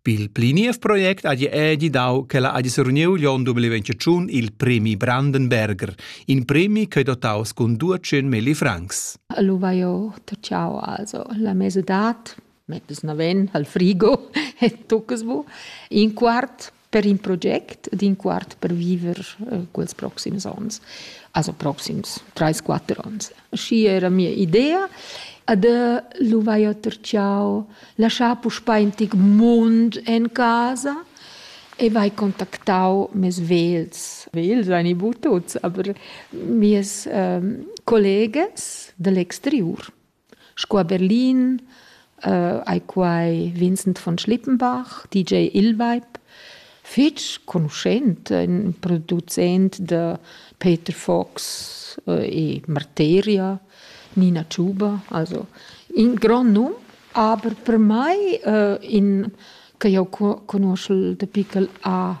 Pil pli niev project hagi edi dau ch'ella hagi surniu l'onn 2021 il premi Brandenberger, in premi ch'ei dotaus cun 200 milli francs. Lu vai jeu tacciau also la mesadad, mettess naven al frigo e toccas bu. In quart per in project d'in quart per viver eh, quels proxims onns, also proxims 3-4 onns. Schi era mia idea ad lu vai oter ciao lasciar puspei in tic mund en casa e vai contactau mes vels. Vels ein i bu tuts, aber mies ähm, collegas dall'exteriur Sco a Berlin ei quei Vincent von Schlippenbach, DJ Illweib, fetg conuschent, in producent da Peter Fox e Marteria, Nina Tschuber, also in grond num, aber per mei in che jeu conoschel da pickel a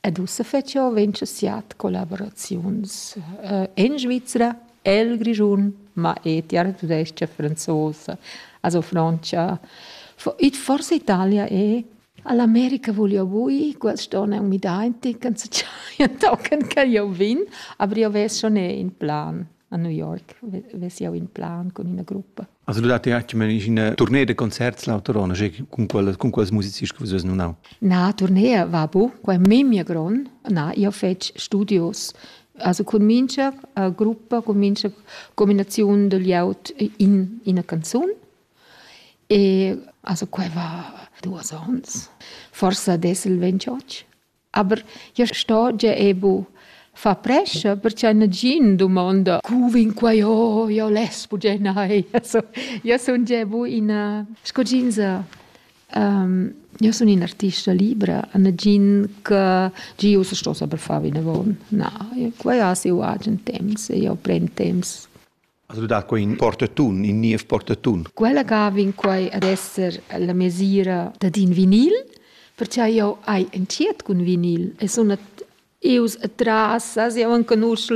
Ed ussa fetsch jeu ventscha siat collaboraziuns en Svizra, el Grischun, ma e tiartudescha franzosa, also frontscha. It forsa Italia è. All'America voglio bui, quest onn è un midainti, can se giaia tochen che io vin, aber io ves schon in plan a New York, ves io in plan con ina gruppa. Also du datti anche in tournée de concerts l'autorona, con quelle con quelles musicisti che vus non hau. Na, tournée va bu, quai memia gron. Na, io fec studios. Also con mincha uh, gruppa, con mincha combinazione degli out in in canzone. E also quai va duos ons. Forse adesso il 28. Aber ja sto gia e bu. Fa prescha perche nagin dumonda cu vin quai oh io les bugia nai. So, io sun gia bu ina sco jeansa um, io sun in artista libra, nagin che gi ussa sto saper far vinavon. Na, quai ha siu agen temps e io pren temps. As dà quai in portatun, in niev portatun. Quella ga vegn quai ad esser la mesira dad in vinil, perche jau hai entschiet cun vinil e sun ius atras, as jau enconusch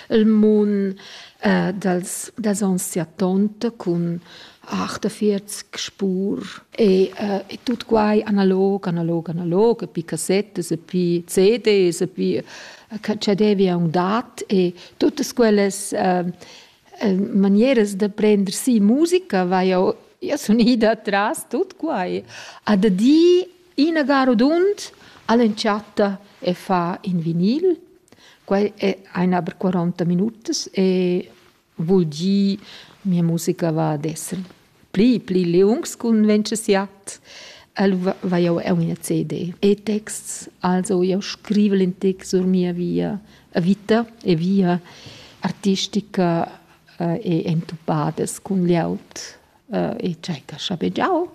il mun äh, dals, dals ons siatont cun 48 spur e, äh, e tut quai analog, analog, analog, e pi cassettas e pi CDs e pi che che devi aunc dat e tuttas quellas uh, manieras da prender si musica vai jau io sun ida atras tut quai a da di ina garudund all'entschatta e fa in vinil quai è ein aber 40 minutas e Vul dir, mia musica va ad esser pli, pli liungs cun ventschesiat. Allura vai jau eu ina CD e texts, also jau scrivel in text sur mia via vita e via artistica eh, e entupadas cun glieud eh, e tschecca schabegiau,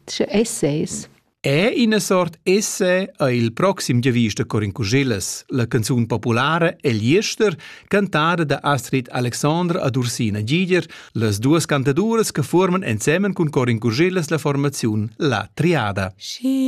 sche essays. È ina sort esse è il proxim giavist da Corin Cuschillas, la canzun populara El Jester, cantada da Astrid Alexandre ad Ursina Giger, las duas cantaduras che forman ensemen cun Corin Cuschillas la formaziun La Triada. She